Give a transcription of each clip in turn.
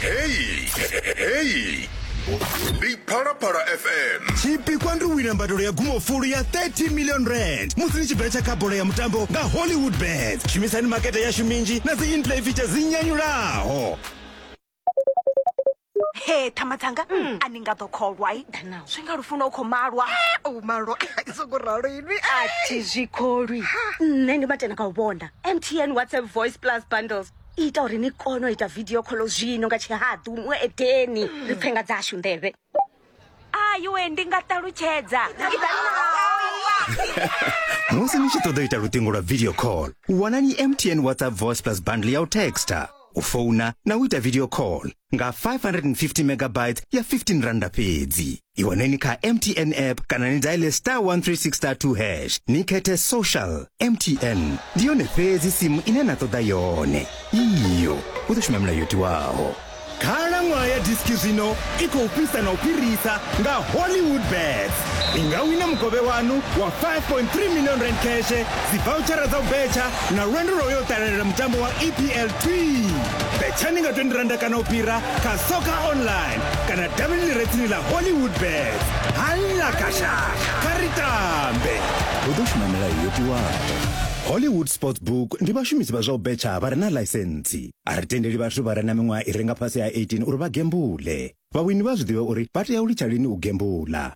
heyi ndi phalaphala fm chipikwa ndi wina mbadolo ya gumofulu ya 30 million rand musi ni chibvera cha kabhola ya mutambo nga hollywood bet shumisani makete yashu minji na dzi inplay feature dzi nyanyulaho he thama dzanga a ni nga ḓo kholwa i zwi nga lufuna u khou malwa o malwa songo ralo inwi athi zwi kholwi nṋe ndi matena kha u vhona mtn whatsapp voice plus bundles ita uri ni kone u ita video kholo zwino nga tshihaḓu mu edeni ri pfe nga dzashu nḓevhe ayiwe ndi nga ṱalutshedza musi ni tshi ṱoḓa u ita luṱingo lwa video call wanani mtn whatsapp voice plus bundle ya u texta u founa na u ita video call nga 550 megabytes ya 15 randa fhedzi i waneni kha mtn app kana ni daile star 136 star 2 hash ni khethe social mtn ndi yone fhedzi simu ine na ṱoḓa yone iyo u ḓo shuma milayo yo tiwaho khalaṅwaha ya diski zwino i khou fhisa na u fhirisa nga hollywood bets ni nga wina mukovhe wanu wa 5.3 million rand cash dzivouchara dza u betsha na lwendo lwa u yo ṱalela mutambo wa epl twi bethani nga 20 randa kana u fhira kha soccer online kana davhini ḽi re tsini ḽa hollywood bet halla kashasha kha ri tambe hu ḓo shuma milayo yo tiwaho hollywood sports book ndi vhashumisi vha zwa u betsha vha re na ḽaisentsi a ri tendeli vhathu vha re na miṅwaha i re nga fhasi ha 18 uri vha gembule vhawini vha zwi ḓivhe uri vha tea u litsha lini u gembula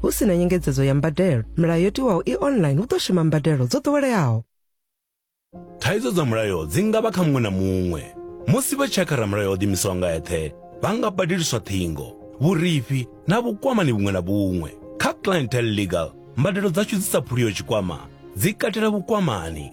Hu si na nyengedzedzo ya mbadelo, milayo yo tiwaho i online hu ḓo shuma mbadelo dzo ḓoweleaho. Thaidzo dza mulayo dzi nga vha kha muṅwe na muṅwe. Musi vha tshakha ramulayo o ḓimisaho nga eṱhe, vha nga badeliswa ṱhingo, vhurifhi na vhukwamani vhuṅwe na vhuṅwe. Kha Clientele Legal, mbadelo dzashu dzi sa phuliho tshikwama dzi katela vhukwamani,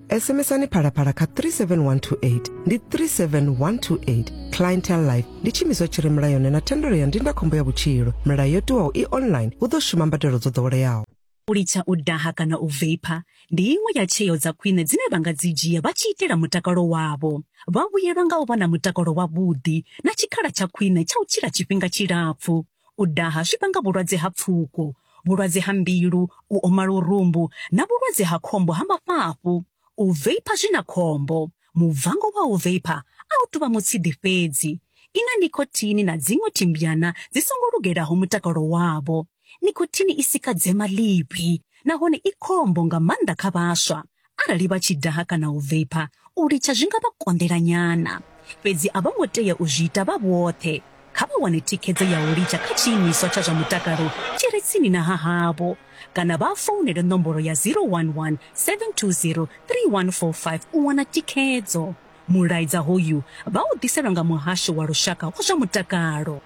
SMSani phalaphala kha 37128 ndi 37128 clientele life ndi tshiimiswa tshi re mulayoni na thendelo ya ndindakhombo ya vhutshilo milayo yo tiwaho i online hu ḓo shuma mbadelo dzo ḓoweleaho u litsha u daha kana u vapor ndi iṅwe ya tsheo dza khwine dzine vha nga dzi dzhia vha tshi itela mutakalo wavho vha vhuyelwa nga u vha na mutakalo wavhuḓi na tshikhala tsha khwine tsha u tshila tshifhinga tshilapfu U daha zwi vhanga vhulwadze ha pfuko, vhulwadze ha mbilu, u oma lurumbu na vhulwadze ha khombo ha mafhafhu. U veipha zwi na khombo. Mubvango wa u veipha a u tou vha mutshidi fhedzi. I na nikhothini na dziṅwe thimbyana dzi songo lugelaho mutakalo wavho. Nikhothini i sika dzema ḽivhi nahone i khombo nga maanḓa kha vhaswa. Arali vha tshi daha kana u veipha, u litsha zwi nga vha konḓela nyana. Fhedzi a vho ngo tea u zwi ita vha vhoṱhe. Kha vha wane thikhedzo ya u litsha kha tshiimiswa tsha zwa mutakalo tshi re tsini na ha havho kana vha founele nomboro ya 011 720 3145 u wana thikhedzo. Mulaedza hoyu vha u ḓiselwa nga Muhasho wa Lushaka wa zwa Mutakalo.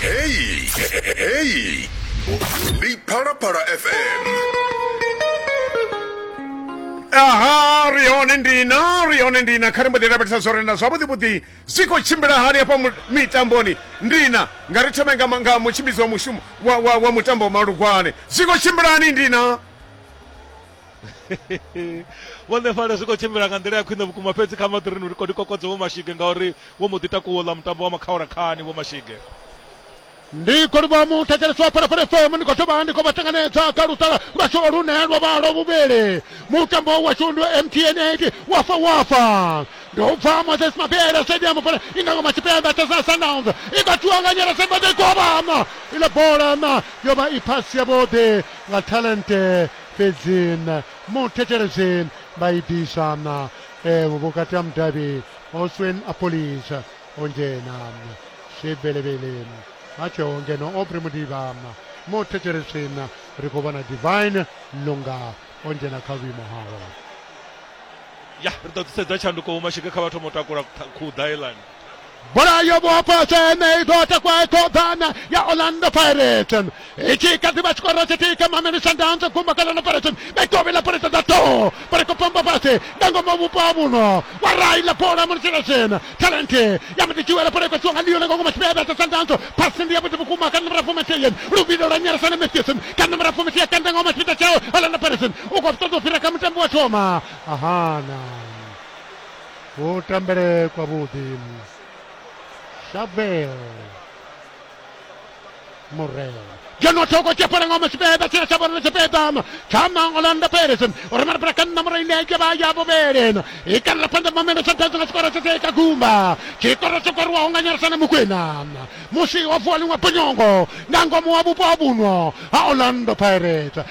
Heyi heyi ndi Phalaphala FM. aha ri hone ndina ri hone ndina kha ri mbo ḓi lavhelesa zwo renda zwavhuḓi vhuḓi zwi khou tshimbila hani hafha mu- mitamboni ndina nga ri thome nga ma- nga mutshimbidzi wa mushumo wa, wa, wa mutambo wa malugwane zwi khou tshimbila hani ndina vhuḓifari zwi khou tshimbila nga nḓila ya khwine vhukuma fhedzi kha maṱirini uri kodi kokodze vho mashige ngauri vho mbo ḓi takuwo ḽa mutambo wa makhaula khani vho mashige ndi khou livha mu thetshelesi wa phalaphala fm ndi khou dovha ndi khou vha tanganedza kha luṱala lwashu lune lwa vha lwa vhuvhili mutambo washu ndi mtn 8 wafa wafa ndi u bva moses mabele stadium fana i nga ngoma tshipembe tesa sundowns i nga tua nga nyela sembadze govhana iḽa bola na yo vha i phasi yavhuḓi nga talente fhedzi muthetshelesi vha i ḓisa vhukati ha mudavhi Oswin Appolis o dzhena Shibelebele a tsheho ngeno Aubrey Mudiba muthetshelesi ri khou vhona Divine Lunga o dzhena kha vhuimo hawe ya ri ḓo ḓisedza tshanduko vhumashika kha vha thoma u takula khuḓa helani Bola yo vho afhasa ene i ḓo takwa i ṱoḓana ya Orlando Pirates. I tshi kha ḓi vha tshikoro tshi tika Mameli Sundowns gumba kha Orlando Pirates. Mikovhe ḽa Pirates dza ṱo vha ri khou pamba fhasi nga ngomu ha vhupo ha vhuno. Wa rai ḽa bola mulitshela zwena. Talent ya mudi tshiwela bola ikwa tshiwanga Leon nga ngomu tshivhe vha tsa Sundowns. Pasi ndi ya vhuḓi vhukuma kha nomoro fumi nthihi. Luvhilo lwa nyarasa na Matthews kha nomoro fumi nthihi kanda ngomu tshipita tshao Orlando Pirates. U khou ṱoḓa u fhira kha mutambi wa thoma. Ahana. kutambele kwavhuḓi shavel murela ngeno thoko tshepalango masipeda tshina tsha vhona tshipedama tsha mangolanda peres uri mara para kanna mura ine ke vha ya vhuvhelena i kanela phanḓa mamelo tsha ḓadza nga tshikoro tsha teka gumba tshikoro tsho koriwaho nga nyarisana mukwena musi ho vuwa liṅwe bonyongo nga ngomu wa vhupo ha vhuno ha orlando pirates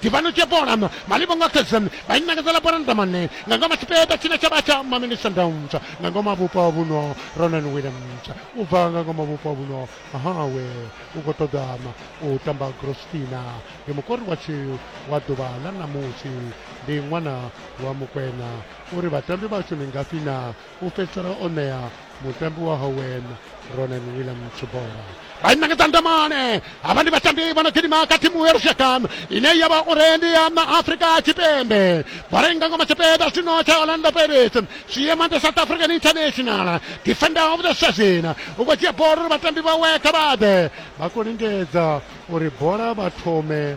Tivhanu tše bola ma li bonga keza ba inakazela bola ndamane nga ngoma tshipeta tshine tsha vha tsha mamini sundowns nga ngoma vhupo ha vhuno ronan williams u bva nga ngoma vhupo ha vhuno hawe u khou ṱoḓa u tamba grostina ndi mukori wa tshiu wa ḓuvha ḽa ṋamusi ndi ṅwana wa mukwena uri vhatambi vhashu ndi ngafhi na u fhedzisela o ṋea mutambi wa howen ronan williams bola vha inangedza ndamane havha ndi vhatambi vha no gidima kha thimu ya lushaka ine ya vha uri ndi ya na afrika tshipembe bola i nga ngoma tshipiḓa zwino tsha orlando pirates zwi ema ndi south african international defender of the season u khou dzhia bola uri vhatambi vhawe kha vhaḓe vha khou lingedza uri bola vha thome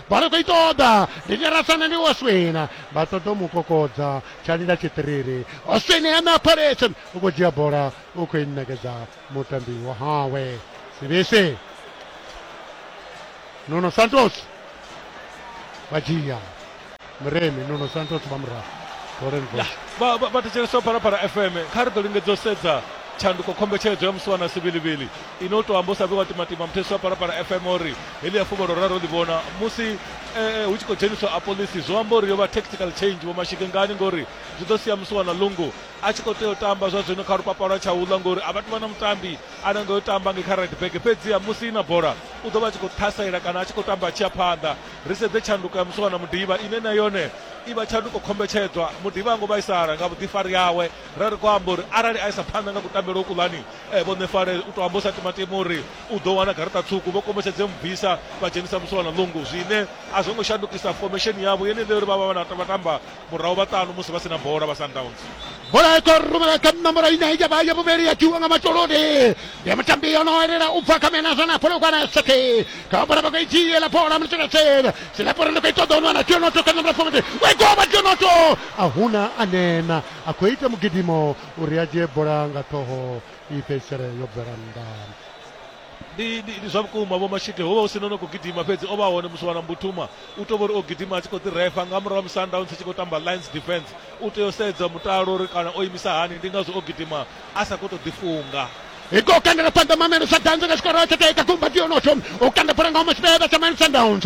vha ri khou i ṱoḓa ndi nyarasana ndi oswina vha ṱoḓa u mu kokodza tsha lila tshiṱiriri oswini hana phaletse u khou dzhia bola u khou i ṋekedza mutambi wa hawe sibisi nuno santos vha dzhia muremi nuno santos vha murahu vha thetshelesa u phalaphala fm kha ri ḓo lingedza u sedza tshanduko khombetshedzo ya musi wana sivhilivhili ine u tou amba u sa vhiwa timatima muthethisi wa phalaphala fm uri heḽi ya fuvhalo raro ḽi vhona musi eh, hu tshi khou dzheniswa a polisi zwo amba uri yo vha tactical change vho mashike ngani ngori zwi ḓo sia musi wana lungu a tshi khou tea u tamba zwa zwino kha lupapa lwa tsha uḽa ngori a vha tuvha na mutambi a nanga yo tamba nge kha red bag fhedziha musi i na bola u ḓo vha a tshi khou ṱhasaela kana a tshi khou tamba a tshi ya phanḓa Ri sedze tshanduko ya Musiwana Mudiba ine na yone i vha tshanduko khombetshedzwa. Mudiba a ngo vhaisala nga vhuḓifari hawe, ra ri khou amba uri arali a isa phanḓa nga kutambele uku lani, Vho Nefale u tou amba hu sa timatimi uri u ḓo wana garaṱa tswuku. Vho kombetshedze mu bvisa vha dzhenisa Musiwana Lungu, zwine a zwo ngo shandukisa fomesheni yavho yenei ya uri vha vha vha na vhatamba murahu vha ṱanu musi vha sina bola vha sundowns bola i khou rumela kha nomboro ine ya vha ya vhuvhili ya tiwa nga matoloni ya mutambi o no elela u bva kha mena zwa na pholokwana sete kha bola vha khou i dzhiela bola mutshekatshela silapore ndi khou i ṱoḓa u nwana tionoto kha nomboro fomete we goba tionoto a huna a nena a khou ita mugidimo uri a dzhie bola nga ṱhoho i fhedzisele yo bvela nnḓa ndi ndi ndi zwa vhukuma vho mashike ho vha hu si nono khou gidima fhedzi o vha hone musi wana mbutuma u tou uri o gidima a tshi khou ḓi refa nga murahu musi sundowns tshi khou tamba lines defense u tea u sedza mutalo uri kana o imisa hani ndi ngazwo o gidima a sa khou tou ḓifunga iko kandela phanḓa mamelo sa danza nga tshikoro tsha taika kumba tionotsho u kanda bola nga huma tshipevha tsha mine sundowns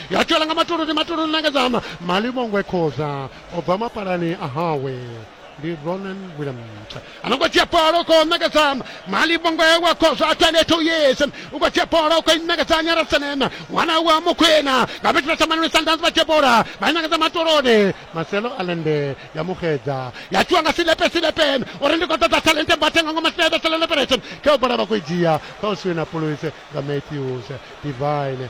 ya tshwela nga matoloni matoloni nangedzama malivhongwe khoza o bva mapalani a hawe ndi ronan williams anongo dzhia bola uko ṋekedza malivhongwe wa khoza a 22 years u khou dzhia bola uko ṋekedza nyarasenema ṅwana wa mukhwena nga vhetshela tsha manoni sundowns vha dzhia bola vha i ṋekedza matoloni marcelo alende ya muxedza ya tshiwa nga silepe silepen uri ndi khou ṱoḓa talente mbathe nga ngoma silepe silepe operation khe u bola vha khou i dzhia kha u siwina puluise nga matthews divine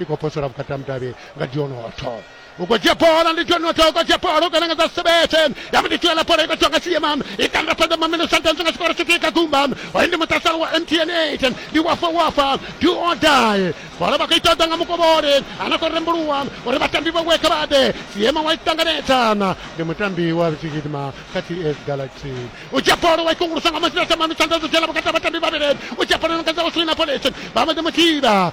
i khou posela vhukati ha mudavhi nga dionotho u khou dzhia bola ndi dionotho u khou dzhia bola u kananga dza sebete ya mudi tshiela bola i khou tswa nga siema i kanda fhedza mamino santhansi nga tshikoro tshithihi kha gumba hoyu ndi muṱasalo wa mtn 8 ndi wafa wafa do or die bola vha khou i ṱoḓa nga mukovhole ana khou rembuluwa uri vhatambi vhawe kha vha ḓe siema wa i ṱanganedzana ndi mutambi wa tshigidima kha ts galaxy u dzhia bola wa i kungulusa nga masina thamanu tshanḓa dzo dzhela vhukati ha vhatambi vhavhili u dzhia bola no kadza u swina polisi vha mbo ḓi mu thivha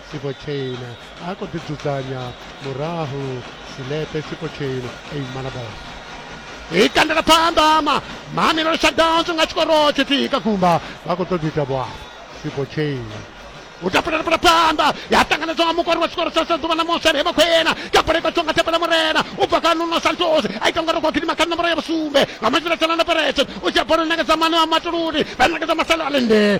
Tshipo Chain a khou ḓidzudzanya murahu Silepe Tshipo Chain a imana bola i kandela phanḓa ma mamelelo shutdowns nga tshikoro tshithihi kha gumba vha khou ṱoḓa ita vhuapo Tshipo Chain u tapulela bola phanḓa ya ṱanganedzwa nga mukori wa tshikoro tsha saḓuvha na mosele he vha khou ena ka bola ikatswa nga thapela murena u bva kha nuno santos a ita ngori khou gidima kha nomboro ya vhusumbe nga matshila tshana na perexe u dzhia bola ṋekedza mane wa matuluni vha ṋekedza masalo a lende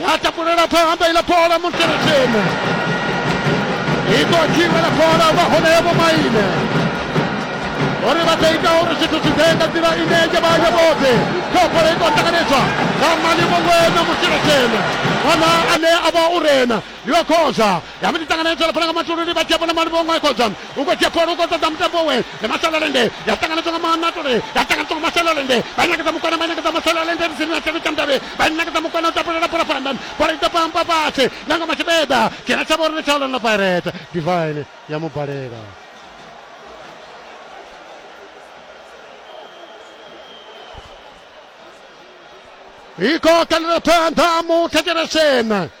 Ya takulela phanḓa iḽa bola Monteretsheni. I ḓo dzhiwa la bola vha hone vho maine. Uri vha ḓo ita uri zwithu zwi ḓe nga nḓila ine ya vha ya vhoṱhe. Kha bola i ḓo ṱanganedzwa nga mali vhongwena Monteretsheni. Wana ane a vha u rena yo khoza yavhili ṱanganedza lapfala nga matulu ndi vhadzia vhona maluvha onwe khodzwa u khou dzia pholo u khou ṱoḓa mutambo we ndi masalalende ya ṱanganedzwa nga manatule ya ṱanganedzwa nga masalalende vha ṋekedza mukwana vha ṋekedza masalalende ndi sini na tshelo tsha mudavhi vha ṋekedza mukwana u tapulela bola fhanda bola i ḓo pampa fhasi na nga matshibeda dzhena tsha vhori ndi tsha orlando pirates divine ya mubalela i khou kalela phanḓa muthetshelesena